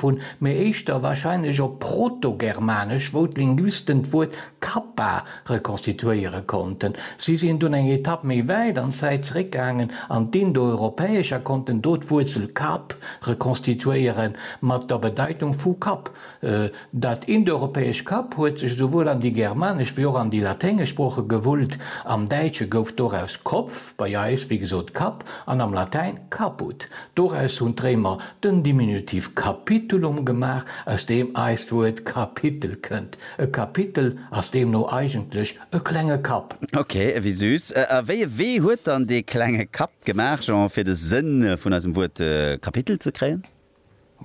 vun, mee éischter warscheinlech op Protogermanesch, wou d'Linguisten d'Wuert kappa rekonstituéiere konnten. Si sinn dunn eng Etapp méi wäit an d'Zäit zeréckgaangen an d'Indoeuropäesch a konnten do d'Wuerzel kap rekonstituéiere mat der Bedeitung vu Kapp. Dat indoeuropäesch kap huet sech esouwuel an déi germanesch wéi och an déi laténgesch Sprooche gewullt. Am Däitsche gouf doraus Kopf, bei eis, wéi gesot, Kapp, an am Latäin caput. Doraus hunn d'Réimer den Diminutiv capitulum gemaach, aus deem eist Wuert Kapitel kënnt. E Kapitel ass deemno eigentlech e klenge Kapp. Ok, ewéi süß. A wéi e Wee huet dann dee klenge Kapp gemaach, Jean, fir de Sënn vun eisem Wuert Kapitel ze kréien?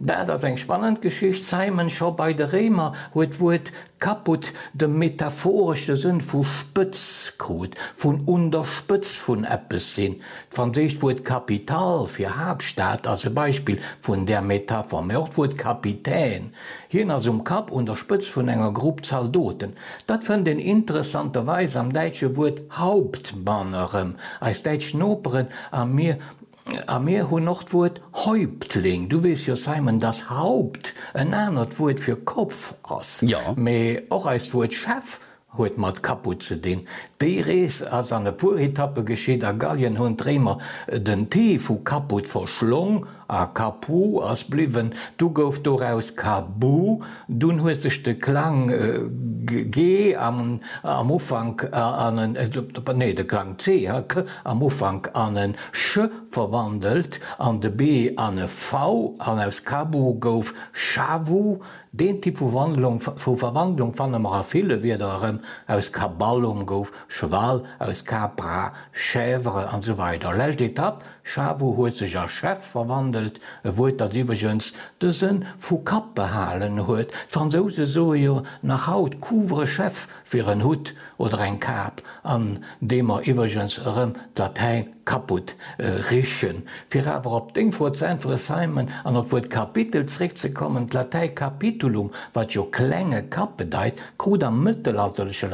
Dat ass eng spannend Geschicht, Simon. Scho bei de Réimer huet d'Wuert Kaputt, de metaphoresche Sënn vu spëtz krut, vun un der Spëtz vun eppes sinn. D'franséischt Wuert capitale fir Haaptstad ass e Beispill vun där Metapher, mä och d'Wuert Kapitän, hien ass um Kapp, un der Spëtz vun enger Grupp Zaldoten. Dat fënnt een interessanterweis am däitsche Wuert Hauptmann erëm. Eis däitsch Noperen a mir A mir hunn och d'Wuert Häuptling. Du weess jo, Simon, dass Haupt en anert Wuert fir Kopf ass. Jo. Mee och eist Wuert Chef huet mat Caput ze dinn. Déi Rees ass an e puer Etappe geschitt. A Gallien hunn d'Réimer den t vu Caput verschlong a Capu ass bliwwen. Du gouf doraus Cabu. Dunn huet sech de Klang G am Ufank an en, nee, de Klang C, ha, k, am Ufank an en ch verwandelt an de b an e v an aus Kabu gouf Shavu. Deen Typ vu Verwandlung fanne mer a ville Wierder erëm, aus Kaballum gouf Cheval, aus Capra Chèvre, an esou weider Lescht Etapp, Chavo huet sech a Chef verwandelt, e Wuert dat iwwregens de Sënn vu Kapp behalen huet, d'Fransouse soe jo nach haut Couvre-chef fir en Hutt oder eng Kap, an deem mer iwwregens erëm d'Latäin kaputt richen. Fir awer op deng Fro ze äntweren Simon, an op d'Wuert Kapitel zréckzekommen, d'Latäi capitulum, wat jo klenge Kapp bedeit, krut am mëttelalterleche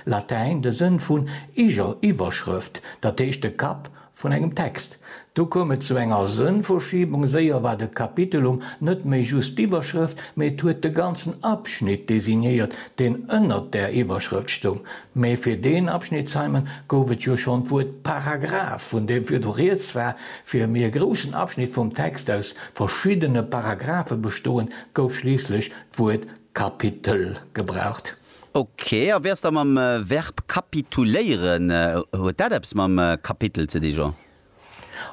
Latäin de Sënn vun Iwwerschrëft, dat heescht de Kapp Vun engem Text. Do koum et zu enger Sënnverschiebung, séier war de Kapitelum net méi just d'Iwwerschrëft, mee et huet de ganzen Abschnitt designéiert, deen ënnert där Iwwerschrëft stoung. Mee fir deen Abschnitt, Simon, gouf et jo schonn d'Wuert Paragraph, vun deem virdu rieds war, fir mee e groussen Abschnitt vum Text aus verschiddene Paragraphe bestoen, gouf schliisslech d'Wuert Kapitel gebraucht. Ok, a wéi ass da mam Verb kapituléieren? Huet dat eppes mam Kapitel ze di, Jean?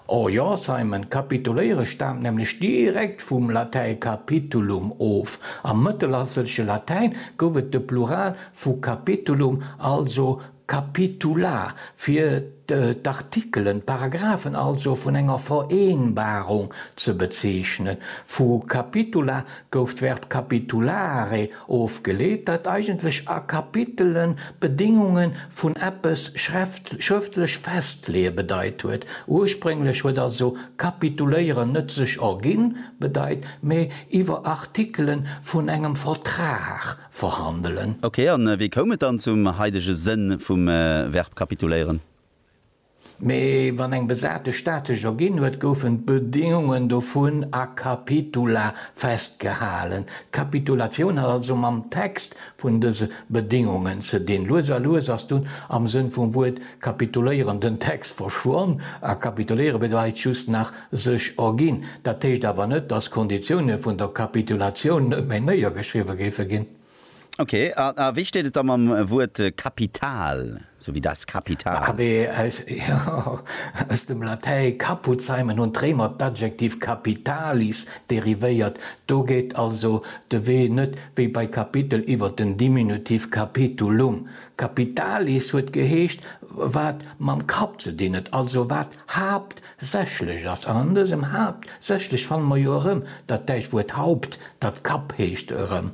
Oh jo, Simon, kapituléiere staamt nämlech direkt vum Latäi capitulum of. Am mëttelalterleche Latäin gouf et de Plural vu capitulum, also Capitula fir d'Artikelen, d'Paragraphen also, vun enger Vereenbarung ze bezeechnen. Vu capitula gouf d'Verb capitulare ofgeleet, dat eigentlech a Kapitelen d'Bedéngunge vun eppes schrëftlech festleeë bedeit huet. Ursprénglech huet also kapituléieren net sech erginn bedeit, mee iwwer Artikele vun engem Vertrag verhandelen. Ok, an wéi koum et dann zum haidege Sënn vum Verb kapituléieren? Mee wann eng besate Stad sech erginn huet, goufen d'Bedingungen dovun a capitula festgehalen. D'Kapitulatioun hat also mam Text vun dëse Bedingungen ze dinn. Lues a lues ass dunn am Sënn vum Wuert kapituléieren den Text verschwonn a kapituléiere bedeit just nach, Sech erginn. Dat heescht awer net, dass d'Konditioune vun der Kapitulatioun net méi néiergeschriwwe géife ginn. Ok, a wéi steet et da mam Wuert Kapital, sou wéi das Kapital? ABS, Jo, aus dem Latäi caput seimen hunn d'Réimer d'Adjektiv capitalis derivéiert. Do geet also de Wee net wéi bei Kapitel iwwer den Diminutiv capitulum. Capitalis huet geheescht, wat mam Kapp ze dinn huet, also wat Haapt Sächlech ass, an an dësem Haapt sächlech fanne mer jo erëm dat däitscht Wuert Haupt, dat Kapp heescht, erëm.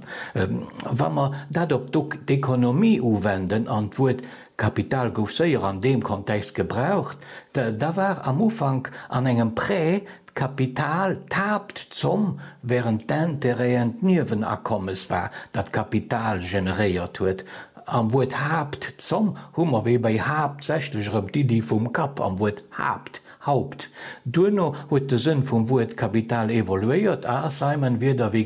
Wa mer dat op d'Dok d'économie uwenden, an d'Wuert Kapital gouf séier an deem Kontext gebraucht, da war am Ufank an engem Prêt d'Kapital d'Haaptzomm, wärend d'Intérêten d'Niewenakommes war, dat d'Kapital generéiert huet. Am Wuert Haapt, Zomm, hu mer wéi bei haaptsächlech erëm d'Iddi vum Kapp am Wuert Haapt, Haupt. Duerno huet de Sënn vum Wuert Kapital evoluéiert a ass haim en Wierder wéi,